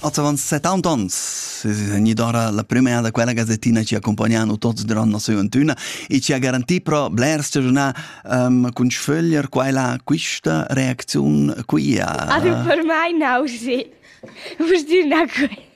Oz avant 70 ans es gnüda ora la prüma da quella gazettina chi accompagnano tots durant nossa giuventüna e ci ha garantì pro blers stagiunà um, cun sföglier quella quista reacziun qui a... Ave per mai nausi. Vus dir na que?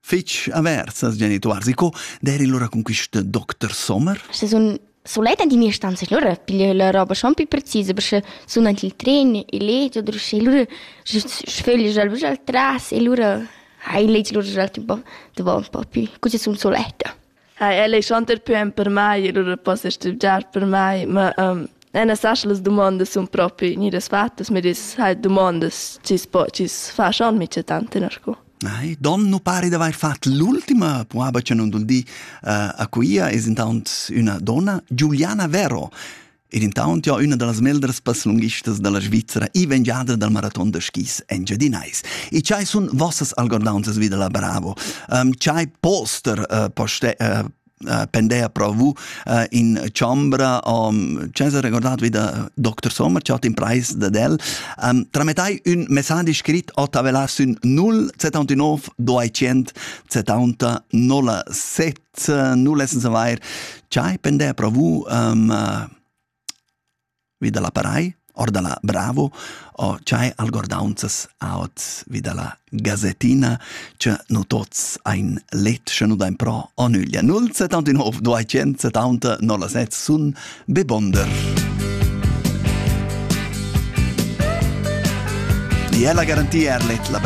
fetg avers als genituors. E co d'eri lura con quist doctor Sommer? Se sun sulet in mia stanza lura piglio la roba schon più precisa perché sun anche il tren e letto oder sche lura sföglio già lura al tras e lura hai letto lura già il tempo de un po' più così sun suletta. ha el ei schon er pü empermai e lura possa stübgiar per mai, ma um, e na sas las dumondas sun propi gnidas fattas, ma dis hai dumondas chi's po chi's fa schon micha tant in sco. Ai, don nu pari d'avair fat l'ultima puaba cha nun dul di uh, a Cuia es intaunt üna donna, Giuliana Vero. Ed intaunt jau üna da las meglras passlunghistas da la Svizra e vengiadra dal maraton da skis engiadinais. E chai sun vossas algordaunzas vi da la Bravo? Um, chai poster uh, poste, uh, uh, pendea pro vu uh, in chambra um, Cesar recordat vi da Dr. Sommer, ciao in price da del um, trametai un message scrit o tavelas un 0 79 200 70 07 eh, nu lessens avair chai pender pro vous um, vi da la parai or da la Bravo o chai algordaunzas aut vi da la gazettina che nu tots ein let sche nu dain pro o nüglia 079 270 07 sun be bonder E è la garantia er let la